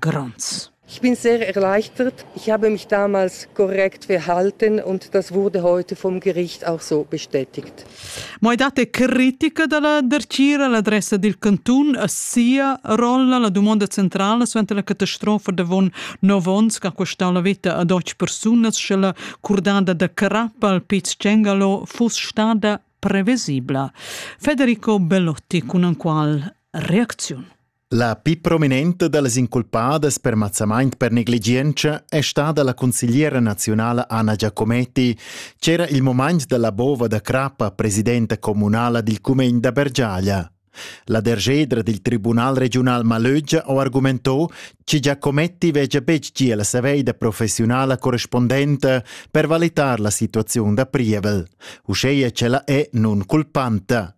Gronds. Ich bin sehr erleichtert. Ich habe mich damals korrekt verhalten und das wurde heute vom Gericht auch so bestätigt. Mai date critica dalla Dercira all'adressa del cantun a sia rolla la domanda centrala suenter la catastrofa davon nov onns che ha costau la vita a deutsche persunas sche la curdada da crappa al Piz Cengalo fuss stada previsibla. Federico Bellotti con un qual reazione. La pli prominenta da las inculpadas per mazzamaint per negligientscha è stada la consigliera naziunala Anna Giacometti ch'era il mumaint da la bova da crappa presidenta communala dil cumegn da Bergiaglia. La dergedra dil Tribunal regiunal Malögia ho argumentò che Giacometti vegia betg gia la saveida professiunala correspondenta per valitar la situaziun da prievel, uscheia che la è nun culpanta.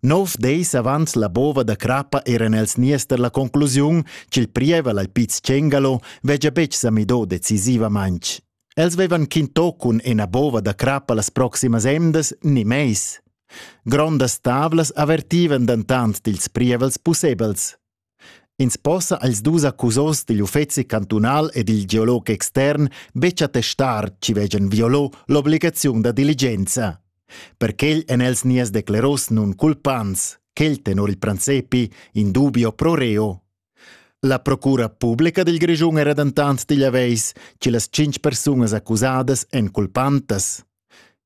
Nov deis avant la bova da crappa eran els nies per la conclusiun ch'il prievel al Piz Cengalo vegia betg sa midò decisivamaintg. Els vevan quintò cun ena bova da crappa las proximas emdas ni meis. Grondas tavlas avertivan dentant dils prievels pussebels. Ins possa als dus accusos digl uffeci cantunal e dil geolog extern betg attestar chi vegian violò l'obligaziun da diligenza. Per quel èn els nies decleros nun culpants, quel tenor il prancepi in dubio pro reo. La procura publica dil Grischun era dentant digl aveis, che las cinc persunas accusadas èn culpantas.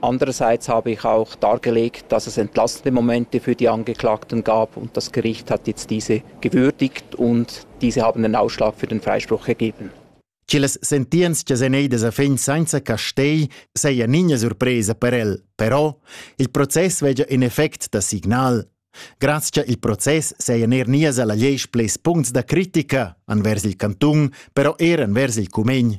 Andererseits habe ich auch dargelegt, dass es entlastende Momente für die Angeklagten gab und das Gericht hat jetzt diese gewürdigt und diese haben einen Ausschlag für den Freispruch gegeben. Ci le sentiens che Zeneida a fin senza Castei seia nigna surpresa per el, però il proces vegia in effect da signal. Grazie il proces seia ner nias alla leis ples puncts da critica anvers il cantun, però er anvers il cumegn.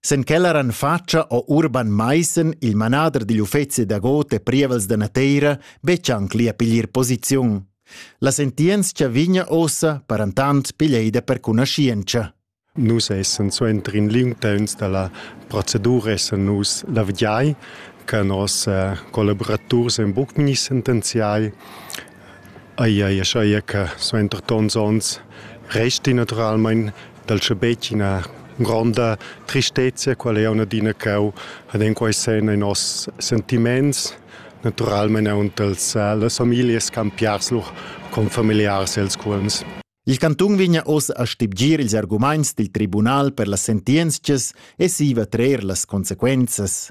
Sen quella ran fatscha ho Urban Maissen, il manader digl uffezi da god e prievels da nateira, betg anc lia piglier posiziun. La sentientscha vigna ossa, parantant, piglieida per cunaschientscha. Nus essen suenter in liung temps dalla procedura essen nus la vigiai, che nos eh, collaborators en buc ni sentenziai Ai ai schaia che suenter tons onns resti naturalmain dal schabetg ina gronda tristezia quella jau adina ch'eu had en quai sen in noss sentiments, naturalmain aunc dals las familias campiars lur confamiliars els cuolms. Il cantun vegna oz a stibgir ils argumaints dil tribunal per las sentientschas e siva trer las consequenzas.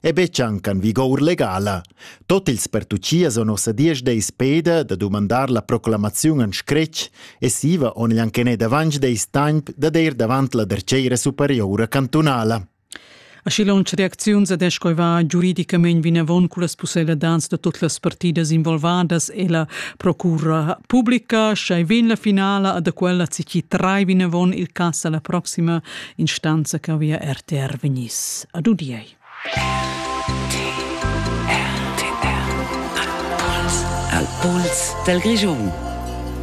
e betg anc en vigour legala. Tot ils pertuchias o nossa diesch deis peda da dumandar la proclamaziun en scretg e siva on igl anchenet avanc deis temp da der davant la derceira superiora cantunala. Aschi lunsch reacziuns ad escoiva giuridicamain vinavon cullas pusseladans da tot las partidas involvadas e la procura publica, schai vegn la finala ad aquella cici trai vinavon il cass alla proxima instanza che via RTR vegniss ad udiei. Al puls del Grischun.